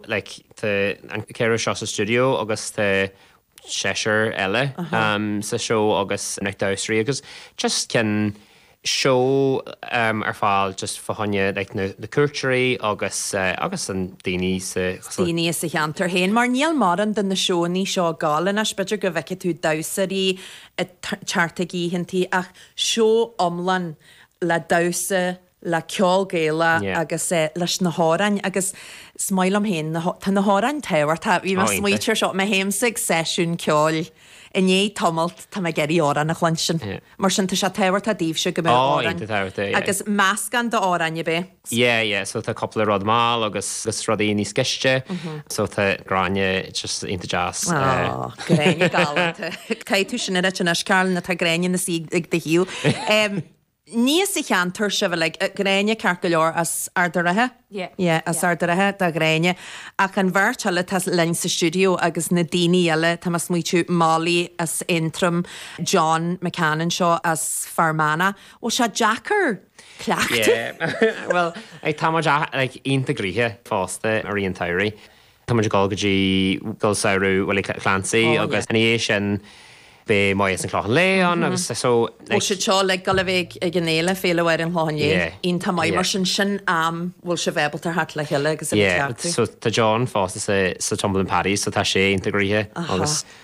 Like, tá an ceathrar seo sa stiúideo agus tá seisear eile sa seó agus na damhsóirí agus just cinn seó ar fáil just fá choinne like na cuairteoirí agus agus na daoine sa, daoine sa cheantar féin mar níl mórán de na seónna seo ag gol anois. B'fhéidir go bhfeicfidh tú damhsóirí ag thart ag oícheantaí ach seó iomlán le damhsa le ceol Gaelach agus leis na hamhráin agus is maith liom féin na, tá na hamhráin tábhachtach, bhí mé ag smaoitiú ar seo, mé fhéin ag seisiún ceoil i ndiaidh tamaill, tá mé ag iarraidh amhrán a chluinstin, mar sin tá sé tábhachtach daoibhse go mbeadh amhráin agus meascán d'amhráin ar bith. Yeah, yeah, so tá cúpla rud mall agus rudaí níos gleoite, so tá Gráinne just iontach deas. Aww, Gráinne galánta. Caithfidh tú sin a rá anois Caroline, tá Gráinne ina suí ag do thaobh. Ní as an cheantar sibh uilig. Gráinne, ceart go leor, as Ard an Rátha? Yeah, yeah, as Ard an Rátha do Ghráinne. Ach an bheirt eile atá linn sa stiúideo agus na daoine eile, tá mé ag smaoitiú, Molly as Aontroim, John McCann anseo as Fear Manach, bhfuil sé deacair cleachtadh? Yeah, bhuel, tá muid iontach graithe fosta ar an tsamhraidh. Tá muid ag dul go dtí scoil samhraidh Willie Clancy agus ina dhiaidh sin beidh Meitheal 's An Clochán Liath ann agus so like. Bhfuil sibhse uilig ag dul a bheith ag an fhéile, Féile Mháire an Chlocháin Léith? Yeah. Iontach maith mar sin sin am a bhfuil sibh ábalta theacht le chéile agus a bheith ag Yeah cleachtadh. so tá John fosta sa sa Tumbling Paddies so tá sé iontach graithe agus Aha.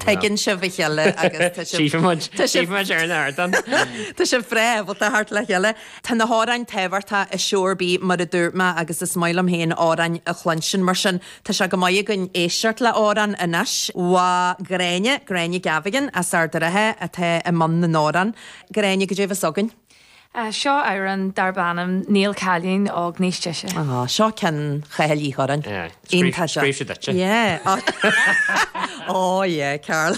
Tuigeann sibh a chéile agus tá sibh. Chífidh muid. Tá sibh. Chífidh muid ar an ardán. Tá sibh breá ábalta theacht le chéile. Tá na hamhráin tábhachtach i seó ar bith mar a dúirt mé agus is maith liom féin amhráin a chluinstin mar sin tá sé chomh maith againn éisteacht le amhrán anois. Bhuel Gráinne, Gráinne Gavigan as Ard a' Rátha atá i mbun na n-amhrán. Gráinne, goidé a bheas againn. Seo amhrán darb ainm Níl Cailín Óg Níos Deise. Á, seo ceann Chathal Uí Churráin. Iontach seo. Scríobh sé duitse. Yeah. Ó, yeah, Carl.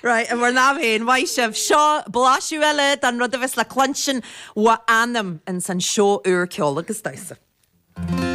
Right, i bhur n-am féin, maith sibh. Seo blaiseadh eile den rud a bheas le cluinstin Mo Anam ins an seó úr ceol agus damhsa.